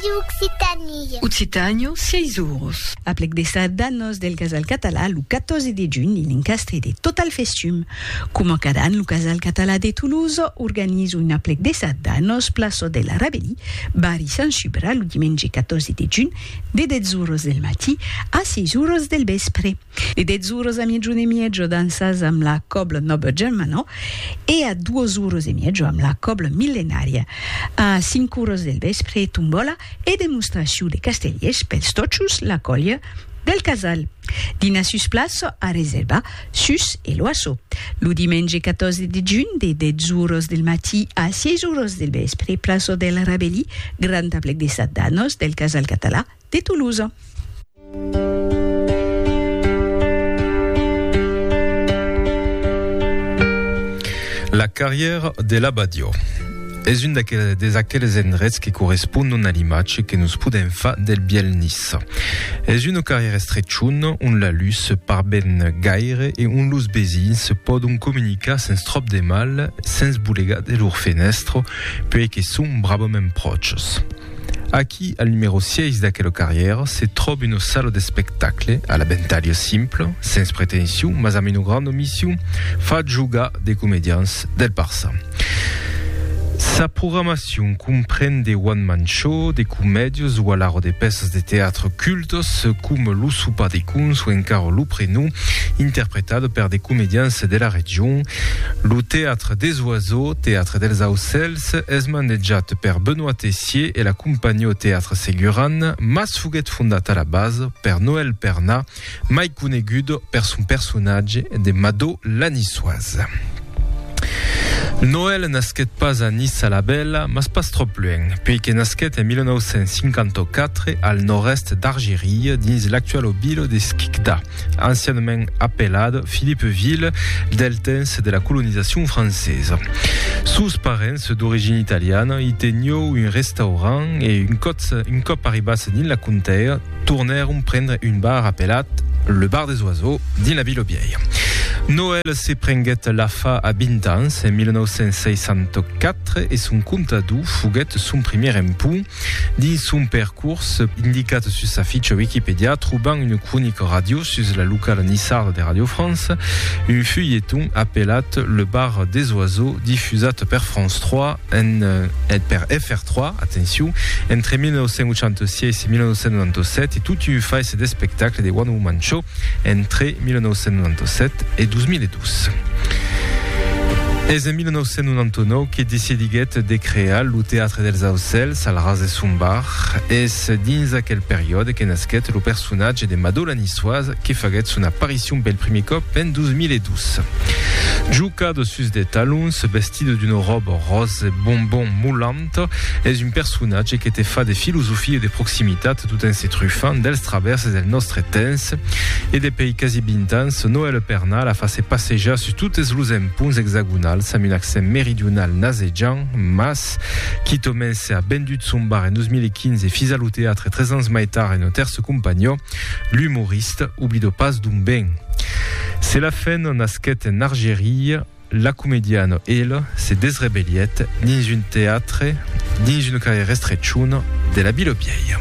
Radio Occitanie. Occitànio, sièis uros. A plec de sardanos del Casal Català, lo 14 de junh i l'encastre de Total Festum. Coma cada an, lo Casal Català de Toulouse organiza un aplec de sardanos plaçò de la Rabelí, barri Sant Subra, lo dimenge 14 de junh, de 10 uros del matí a 6 uros del vèspre. De 10 oras a miegiun e miegio dansas amb la cobla Noble Germano e a 2 oras e miegio amb la cobla Millenària. A 5 oras del vèspre, tombòla e demostracion de castellers pels tòchos la còlha del Casal. Dinar sus plaça a reservar sus Eloasso. Lo dimenge 14 de junh, de 10 oras del matí a 6 oras del vèspre, plaça del Rabelí, grand aplec de sardanos del Casal Català, de Toulouse. La carrièra de l'Abadiò es un des aqueles endrets que correspondon a l'imatge que nos podèm far del bièlh Nice. Es una carrièra estrechona ont la lutz se par ben gaire e ont los vesins se pòdon comunicar sens tròp de mal, sens bolegar de lor fenèstra, puèi que son bravament pròches. Aquí, al numèro 6 d'aquela carrièra, se tròb una sala d'espectacle, a la bentalha simpla, sens pretension, mas amb una granda mission, fa jogar de comedians del Barça. Sa programacion compren de one man show, de comèdias o alara de pèças de teatre cultas, coma Lo sopar de cons o encara Lo prenom, interpretada per de comedians de la region. Lo teatre des oiseaux, teatre dels aucèls, L'Aise es manejat per Benoît Tessier e la compagnie au théâtre Seguran, mas foguèt fondat a la base per Noël Perna, mai conegut per son personatge de Mado la Niçoise. Noël nasquèt pas a Nice-la-Bella, mas pas tròp luènh, puèi que nasquèt en 1954 al nòrd-èst d'Argerie, dins l'actual obilo de Skikda. ancianament apelad Philippeville, del temps de la colonizacion francesa. Sos parents, d'origina italiana, i teniou un restaurant e un còp, un còp arribats dins la contea, tornèron prendre un bar apelat Le Bar des Oiseaux dins la vila vièlha. Noël se prenguèt la fa a 20 ans, en 1964, e son comptador foguèt son primièr empont. Dins son percors, indicat sus sa ficha Wikipedia, trobam una cronica ràdio sus la locala nissarda de Radio France, un fulheton apelat Le bar des oiseaux difusat per France 3 en, et per FR3, atencion, entre 1986 e 1997 e tot un fais d'espectacle de One Woman Show, entre 1997 e 2002. Es en 1999 que decidiguèt de crear lo Teatre dels Aucèls al ras de son bar. Es dins aquel periòde que nasquèt lo personatge de Madò la Niçoise que faguèt son aparicion pel primier còp en 2002. Juca de sus de talons, vestida d'una ròba ròse bonbon molant, Rosetto es un personatge que te fa de filosofia e de proximitat tot en se trufant dels travèrses del nòstre temps. E depei quasi 20 ans, Noèl Pernà la fa se passejar sus totes los emponts exagonals amb un accent meridional nasejant, mas, quitament se a vendut son bar en 2015 e fisa lo teatre tres ans mai tard en Nos Tèrces Compagnons, l'umorista oblido pas d'on ven. Se la fen nasquèt en Argeria, La comediana, ela, se desrebelièt dins un teatre, dins un carrèr estrechon de la vila vièlha.